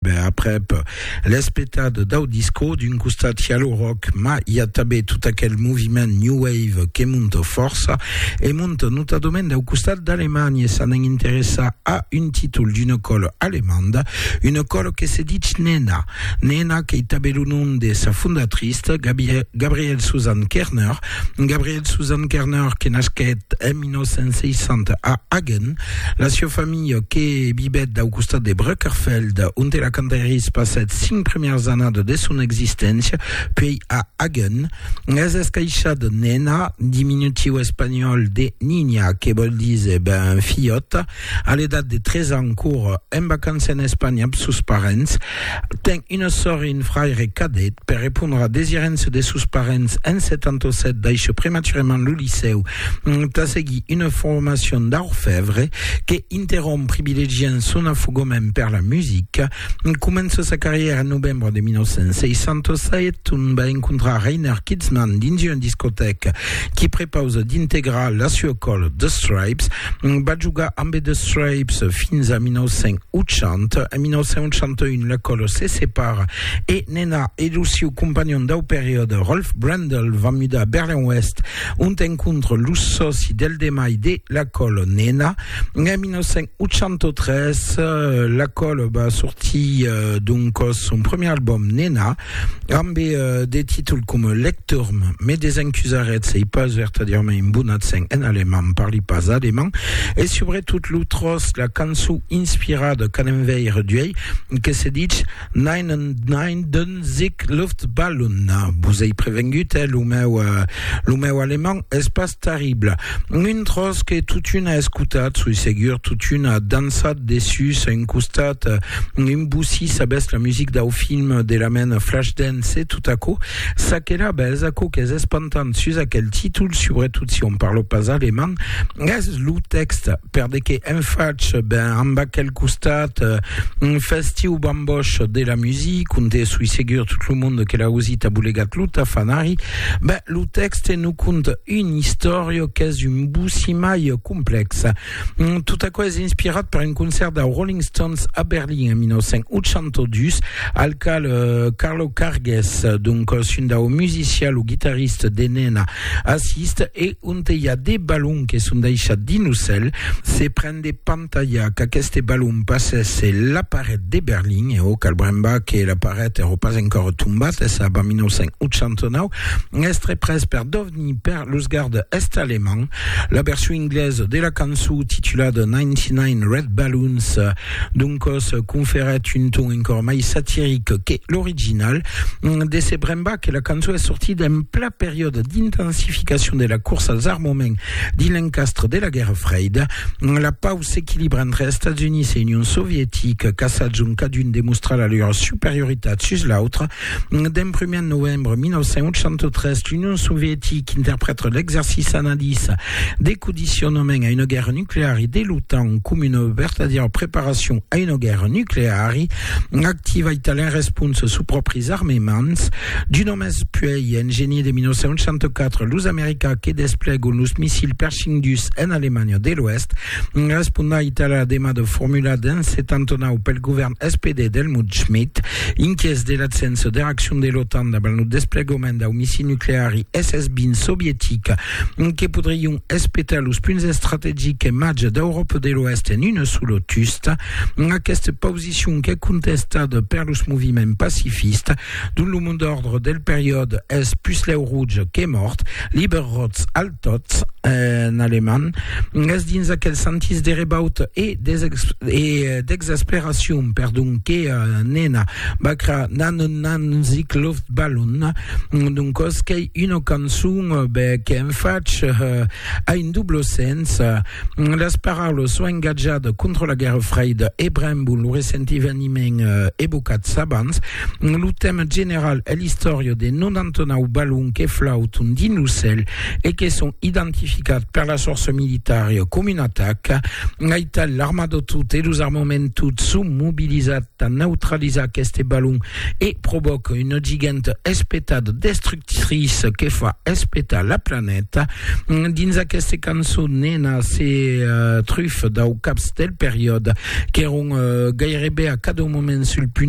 ben aprèp, l'espetat dau disco, d'un costat i a lo rock, ma i a tabé tot aquel moviment new wave que monta fòrça, e monta notadament dau costat d'Alemanha, s'anèn interessar a un títol d'una còla alemanda, una còla que se ditz Nena. Nena qu'ei tabé lo nom de sa fondatrice, Gabrielle Susanne Kerner, Gabriel Susan Kerner, que nasquèt en 1960 a Hagen, la sieu familha que vivèt dau costat de Brückerfeld, onte la Cantaeris passèt cinc primièrs annadas de son existéncia, puèi a Hagen, es escaishada Nena, diminutiu espanhòl de Niña, que vòl díser ben filhòta, A l'edat de 3 ans, cour en vacança en Espanha amb sos parents, ten una sòr e un fraire cadet. Per repondre a desirença de sos parents, en 77 daishè prematurament lo licèu tà seguir una formacion d'orfèvre que interromp privilegiant son afogament per la musica. Comença sa carrièra en novembre de 1967, ont va encontrar Reiner Kitzman dins una discotèca qui prepausa d'integrar la sua còla The Stripes. Va jogar ambe The Stripes fins a 1980. En 1981 la còla se separa e Nena e lo siu companhon dau periòde Rolf Brendel van mudar a Berlin-Oèst, ont encontra los sòci del demai de la còla Nena, En 1983, la Cole va sortir euh, donc son premier album Nena, amb euh, des titres comme Lecturm, mais des incusarets, c'est pas vertadièrement un bon accent en allemand, parli pas allemand, et surtout l'outros, la cançon inspirada qu'en enveire duei, que se dit Nein an nein d'un sic Luftballon. Vos ei prevengut, eh? Lo meu, lo meu alemand es pas terrible. Un tros que totun a escotat, soi segur, totun a dançat dessus. A un costat, un bossí sabés la music dau film de la mena Flashdance e tot aquò s'aquela bes aquò qu'es espantant sus aquel títol, subretot si on parlo pas alemand, es lo tèxte. per de que en fach ben amb aquel costat un festiu bamboch de la music onde soi segur tot lo monde que l'a ausit a bolegat lo tafanari ben lo texte no conta un istòria qu'es un boussi mai complex mm, tot aquò es inspirat per un concert de Rolling Stones a Berlin en 1982 al cal eh, Carlo Cargues donc un dau musician lo guitarrista de Nena assiste e Onte i a de balons que son deishats dins lo cèl, se pren de pantalhar qu'aqueste balon passèsse la paret de Berlin, e o cal brembar que la paret èrò pas encòra tombat, es ab a 1989, es tre pres per dovnir per los gardes est-alemands. La version inglesa de la cançó titulada 99 Red Balloons doncòs conferèt un ton encòra mai satiric que l'original. De se brembar que la cançó es sortida en pla. periòde d'intensificacion de la corsa als armaments dins l'encastre de la Guèrra Freida, la pau s'equilibra entre Estats Units e Union Sovietica, caçats ont cadun demostra la lor superioritat sus l'autre. D'en primièr novembre 1983, l'Union Sovietica interprèta l'exercici analiza de condicionament a una guèrra nucleari de l'OTAN coma una vertadièra preparacion a una guèrra nucleari, Activa italien responsa sus pròpris armements. Du només puèi, en genier de 1964, los americans que desplegon los missils Pershing dus en Alemanha de l'Oèst respondon a Itàlia la demanda formulada en 79 pel govèrn SPD d'Helmut Schmidt, inquiets de l'abséncia de reaccion de l'OTAN davant lo desplegament dau missil nucleari SS-20 sovietic que podrion espetar los punts estrategics en matja d'Euròpa de l'Oèst en una sola tusta. Aquesta pausicion qu'es contestada per los moviments pacifistes, dont lo mond d'ordre del periòde es puslèu rouge que mòrt, Lieber Rotz al Totz, en alemand, es dins aquel sentís de rebauta e d'exasperacion, perdon, que nena Bacra nan un nan zic loft balon d'un cos qu'ei una cançon be qu'en fach a un doble sens las paraules son engatjat contra la guerra freida e brembon lo recent eveniment evocat s'abans lo tèma general e l'istòria de 99 balon que flauton dins lo cèl e que son identificat per las forças militaria com un atac aital l'arma de tot e los armaments tot son mobilizat tà neutralizar aqueste balon e provòca una giganta espetada destructriça que fa espetar la planeta. Dins aquesta cançon, Nena se trufa dau caps del periòde qu'èron gairebe a cada moment sul punt